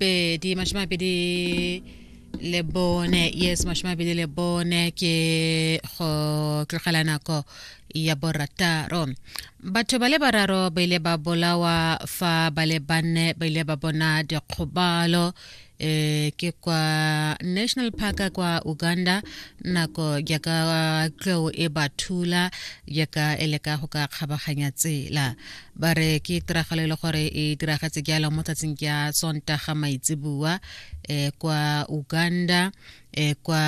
pedi mashome a mabedi le bone yes mashome a mabedi le bone ke go tlogela nako ya borataro batho ba le bararo ba ile ba bolawa fa ba le banne ba ile ba bona dikgobalo eh ke kwa national park kwa uganda nako ya ka tlou e ba thula ya ka e leka go ka kgabaganya tsela ba re ke tiragalo e le gore e diragetse jalo mo tsatsing ya sontaga maitsebua eh, kwa uganda eh, kwa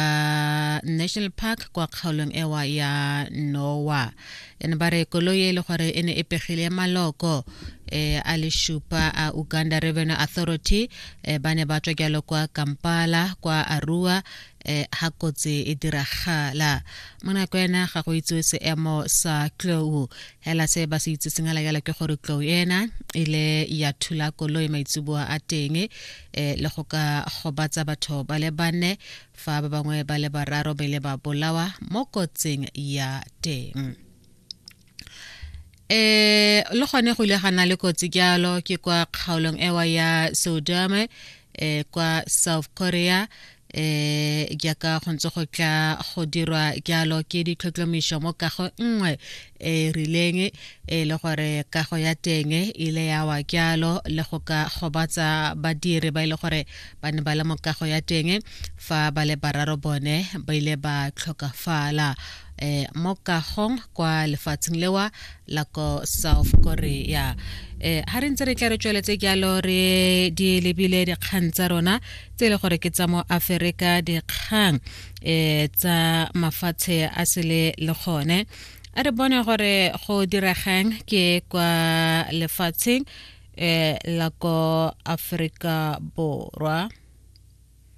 national park kwa kgaolong ewa ya noa ene ba re koloi e le gore e ne e pegile maloko eh, a le šupa a uganda revenue authority eh, ba ne ba tswa jalo kwa kampala kwa arua eh ha kotsi e diragala mona ko ena ga go itsewe seemo sa tlou hela se ba se itse sengala yala ke gore tlou ena e le ya thula koloi maitsuboa a teng eh, le go ka gobatsa batho ba le bane fa ba bangwe ba le bararo ba ile ba bolawa mo kotsing ya teng eh le gone go ile ga na le kotsi jalo ke kwa kgaolong ewa ya sodome eh kwa south korea eh jaaka go ntse go tla go dirwa jalo ke ditlhotlhomišo mo kago nngwe e rileng e le gore kago ya teng e ile ya wa jalo le go ka gobatsa badiri ba ile e gore ba ne ba le mo kago ya teng fa ba le bararo bone ba ile ba tlhokafala eh, mo kagong kwa lefatsheng lewa la ko south korea eh ha re ntse re tla re tsweletse jalo re di lebile dikgang tsa rona tse e le gore ke tsa mo aferika dikgang eh tsa mafatshe a sele le gone a re bone gore go diregang ke kwa lefatsheng eh la ko aferika borwa